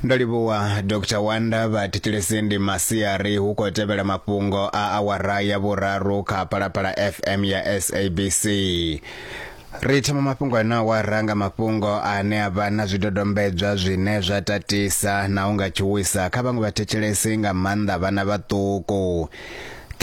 ndo livhuwa dr wanda vha thetshelesi ndi masiari hu khou tevhela mafhungo a awara ya vhuraru kha phalaphala fm ya sabc ri thoma mafhungo ane awara nga mafhungo ane a vha na zwidodombedzwa zwine zwa tatisa na u nga tshuwisa kha vhaṅwe vhathetshelesi nga maanḓa vhana vhaṱuku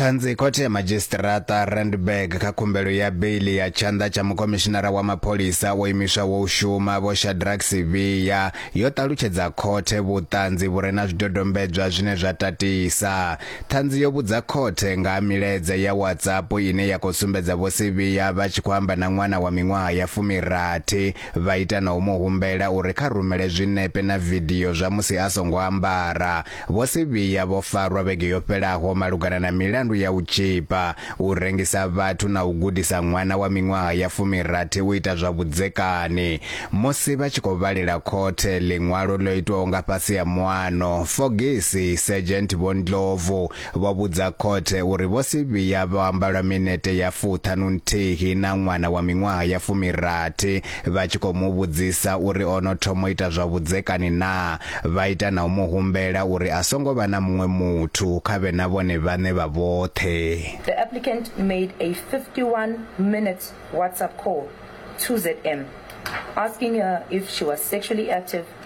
ṱhanzi khothe ya madzhisiṱiraṱa randburg kha khumbelo ya beili ya tshanḓa tsha mukomishinara wa mapholisa wo imiswaho u shuma vho shadrack sivhiya yo ṱalutshedza khothe vhuṱanzi vhu re na zwidodombedzwa zwine zwa tatisa ṱhanzi yo vhudza khothe nga ha milaedza ya whatsapp ine ya khou sumbedza vho sivhiya vha tshi khou amba na ṅwana wa miṅwaha ya fumirathi vha ita na u mu humbela uri kha rumele zwinepe na vidio zwa musi a songo ambara Vho Sibiya vho farwa vhege yo fhelaho malugana na milandu ya u tzhipa, u rengisa vhathu na u gudisa ṅwana wa miṅwaha ya fumirathi u ita zwa vhudzekani. Musi vha tshi khou vhalela khothe ḽiṅwalo ḽo itwaho nga fhasi ha muano, Fogisi Sergeant Vho Ndlovu Vho vhudza khothe uri vho si vhuya vha amba lwa minete ya fuṱhanu nthihi na ṅwana wa miṅwaha ya fumirathi vha tshi khou mu vhudzisa uri o no thoma u ita zwa vhudzekani naa, vha ita na u mu humbela uri a songo vha na muṅwe muthu kha vhe na vhone vhaṋe vha vhoṱhe. The applicant made a 51 minutes WhatsApp call to ZM asking her if she was sexually active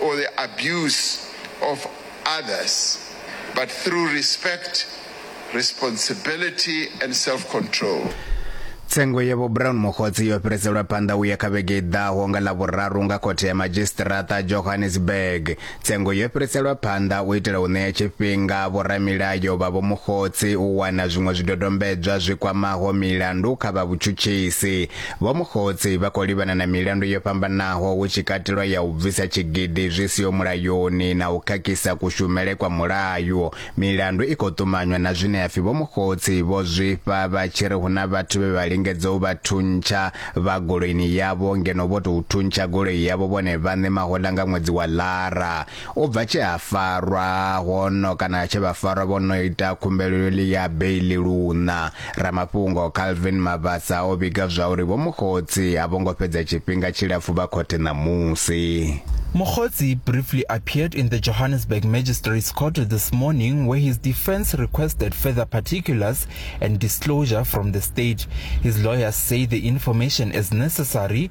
or the abuse of others but through respect, responsibility and self-control. Tsengo ya Vho Brown Mokgotsi yo fhiriselwa phanḓa u ya kha vhege i ḓaho nga Ḽavhuraru nga khothe ya madzhisiṱiraṱa Johannesburg. Tsengo yo fhiriselwa phanḓa u itela u ṋea tshifhinga vhoramilayo vha Vho Mokgotsi u wana zwiṅwe zwidodombedzwa zwi kwamaho milandu kha vha vhutshutshisi. Vho Mukhotsi vha khou livhana na milandu yo fhambanaho hu tshi katelwa ya u bvisa tshigidi zwi siho mulayoni na u khakhisa kushumele kwa mulayo. Milandu i khou ṱumanywa na zwine hapfi Vho Mukhotsi vho zwifha vha tshi ri hu na vhathu vhe vha lingedza u vha thuntsha vha goloini yavho ngeno vho tou thuntsha goloi yavho vhone vhaṋe mahoḽa nga ṅwedzi wa Lara. U bva tshe ha farwa hono kana tshe vha farwa vho no ita khumbelo yo ḽi ya beiḽi luṋa, ramafhungo Calvin Mabasa o vhiga zwa uri Vho Mokgotsi a vho ngo fhedza tshifhinga tshilapfu vha khothe ṋamusi. Mokgotsi briefly appeared in the Johannesburg Magistrates Court this morning where his defense requested further particulars and disclosure from the state. His lawyers say the information is necessary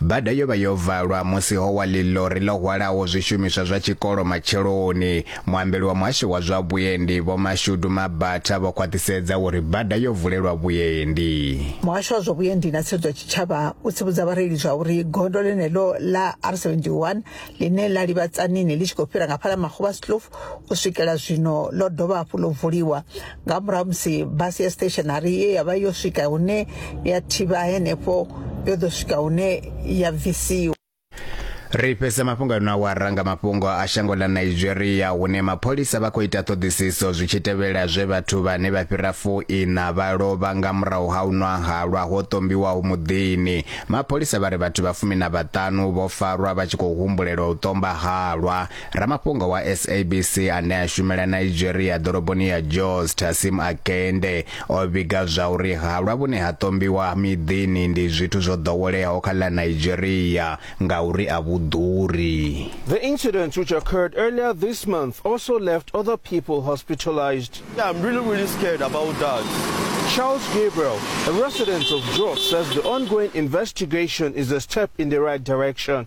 Bada yo vha yo valwa musi ho wa ḽiḽori ḽo hwalaho zwishumiswa zwa tshikolo matsheloni. Muambeli wa muhasho wa zwa vhuendi Vho Mashudu Mabatha vho khwaṱhisedza uri bada yo vulelwa vhuendi. Muhasho wa zwa vhuendi na tsireledzo ya tshitshavha u tsivhudza vhareili zwa uri gondo ḽeneḽo ḽa R71 ḽine ḽa livha Tzaneen ḽi tshi khou fhira nga Phala Makguvha Slouf u swikela zwino ḽo dovha hafhu ḽo vuliwa nga murahu musi basi ya stationary ye ya vha yo swika hune ya thivha henefho yo ḓo swika hune ya bvisiwa ri fhedza mafhungo ano awara nga mafhungo a shango ḽa nigeria hune mapholisa vha khou ita ṱhoḓisiso zwi tshi tevhela zwe vhathu vhane vha fhira fuiṋa vha lovha nga murahu ha u nwa halwa ho ṱombiwaho muḓini mapholisa vha ri vhathu vha fumi na vhaṱanu vho farwa vha tshi khou humbulela u ṱomba halwa ramafhungo wa sabc ane a shumela nigeria ḓoroboni ya jos tasim akende o vhiga zwa uri halwa vhune ha ṱombiwa miḓini ndi zwithu zwo ḓoweleaho kha ḽa nigeria ngauri a vhu ḓuri The incident, which occurred earlier this month, also left other people hospitalized. Yeah, I'm really, really scared about that. Charles Gabriel, a resident of Jos, says the ongoing investigation is a step in the right direction.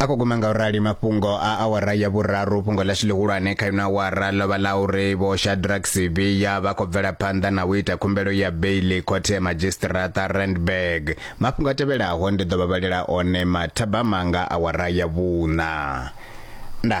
a khou guma nga u rali mafhungo a awara ya vhuraru fhungo ḽashu ḽihulwane kha ino awara ḽo vha ḽa uri vho shadrack sibiya vha khou bvela phanḓa na u ita khumbelo ya beili khothe ya madzhisiṱiraṱa randburg mafhungo a tevhelaho ndi ḓo vha vhalela one mathabama nga awara ya vhuṋa nda